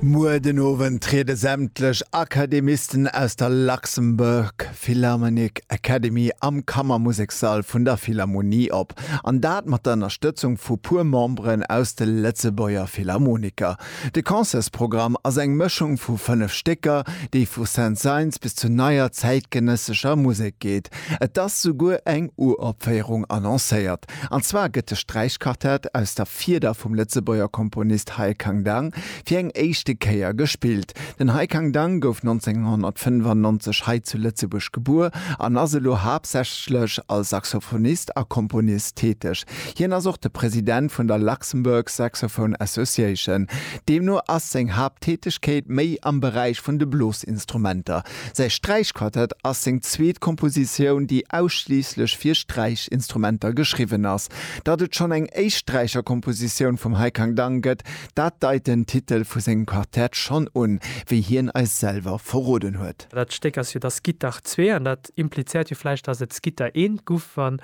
Muer den Owend triede sämtlech Akademisten aus der Luxembourg Philharmonic Academy am Kammermusekssall vun der Philharmonie op, an dat mat der Ënnerstëtzung vu puer Memberen aus de Lëtzebuerger Philharmoniker. De Concertsprogramm ass eng Mëschung vu fënnef Stécker, déi vu Saint-Saëns bis zu neier zäitgenëssescher Musek geet. Et ass souguer eng Uropféierung annoncéiert. An zwar gëtt de Sträichquartett aus der Fieder vum Lëtzebuerger Komponist Hai Khang Dang fir eng éischte Kéier gespillt. Den Hai Khang Dang gouf 1995 hei zu Lëtzebuerg gebuer an ass elo haaptsächlech als Saxophonist a Komponist täteg. Hien ass och de President vun der Luxembourg Saxophone Association. Deemno ass seng Haapttätegkeet méi am Beräich vun de Blosinstrumenter. Säi Sträichquartett ass seng zweet Kompositioun, déi ausschliisslech fir Sträichinstrumenter geschriwwen ass. Datt et schonn eng éischt Sträicherkompositioun vum Hai Kang Dang gëtt, dat deit den Titel vu sengem Quartett schonn un, wéi hien eis selwer verroden huet. Dat Stéck ass jo da Skittach zwee, an dat implizéiert jo vläicht, datt et Skitter eent guff, wann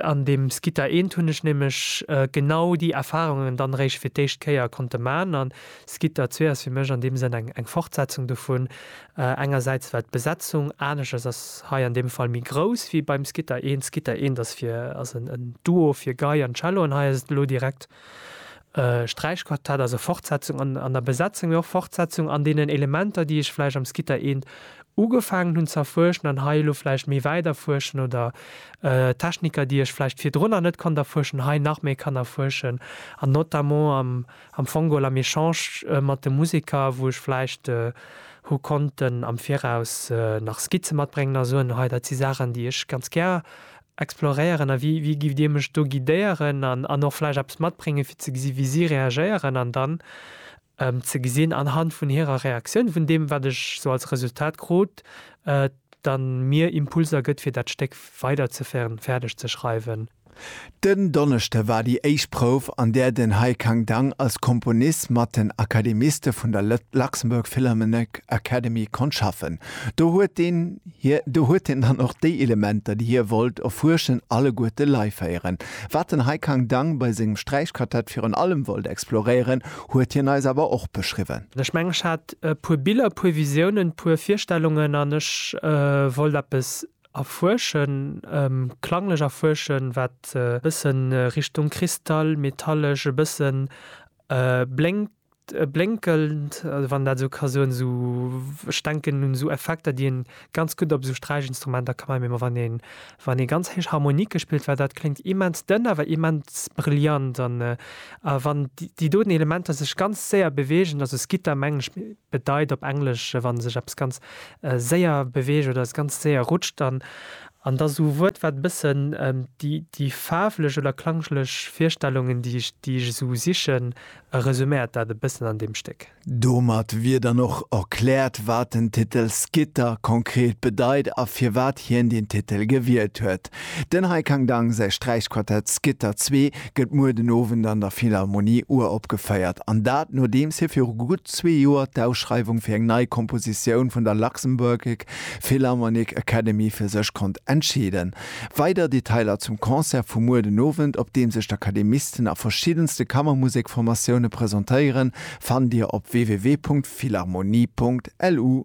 An deem Skitta eent hunn ech nämlech genau déi Erfahrungen dann eréischt fir d'éischt Kéier konnte man. An Skitta zwee ass fir mech an deem Sënn eng Fortsetzung dovun. Engersäits well d'Besetzung aneschters ass, hei an deem Fall méi grouss wéi beim Skitta eent. Skitta eent ass fir ass en Duo fir Gei an Cello an hei ass et elo direkt Sträichquartett ass e Fortsetzung an an der Besetzung mee och Fortsetzung an deenen Elementer déi ech vläicht am Skitta eent ugefaangen hunn ze erfuerschen an hei elo vläicht méi wäit erfuerschen oder Techniker déi ech vläicht virdrunner net konnt erfuerschen hei nach méi kann erfuerschen an notamment am am Fongol am Echange mat de Museker wou ech vläicht hu konnten am Viraus nach Skizze matbréngen a soen hei dat si Saachen déi ech ganz gär exploréieren a wéi wéi gift Dir mech do guidéieren an an och vläicht eppes matbréngen fir ze gesi wéi si reagéieren an dann ze gesinn anhand vun hirer Reaktioun vun deem wat ech sou als Resultat krut dann mir Impulser gëtt fir dat Stéck weiderzeféieren fäerdeg ze schreiwen. Den Donneschde war déi éischt Prouf an där den Haikang Dang als Komponist mat den Akademiste vun der Luxembourg Philharmonic Academy konnt schaffen. Do huet deen. Hie, do huet hien dann och déi Elementer, déi hie wollt erfuerschen, alleguerte leiféieren. Wat den Haikang Dang bei sengem Sträichquartett virun allem wollt exploréieren, huet hien eis awer och beschriwwen. Ech mengen, ech hat e puer Biller, e puer Visiounen, e puer Virstellungen an ech wollt eppes erfuerschen, klanglech erfuerschen, wat e bëssen Richtung Kristall, metallesch, e bësse blénkt. Blénkelnd, wann een dat esou ka soen, esou, ech denken un esou Effekter, déi een ganz gutt op esou Sträichinstrumenter ka maachen, wann een, wann ee ganz héich Harmonike spillt, well dat kléngt immens dënn, awer immens brillant an wann déi doten Elementer sech ganz séier beweegen, also Skitter mengen ech bedeit op Englesch, wa sech eppes ganz séier beweegt oder es ganz séier rutscht, dann an da esou e Wuert, wat e bëssen déi faarflech oder klanglesch Virstellungen, déi ech, déi ech esou sichen, E resuméiert dat e bëssen an deem Stéck. Domat wier dann och erkläert, wat den Titel Skitter konkret bedeit a firwat hien deen Titel gewielt huet. Den Hai Kang Dang säi Sträichquartett Skitter zwee gëtt muer den Owend an der Philharmonie uropgeféiert, an dat nodeems hie viru gutt zwee Joer d'Ausschreiwung fir eng nei Kompositioun vun der Luxembourgic Philharmonic Academy fir sech konnt entscheeden Weider Detailer zum Concert vu muer den Owend, op deem sech d'Akademisten a verschiddenste Kammermusekformatioune presentéieren, fannt Dir op www.philharmonie.lu.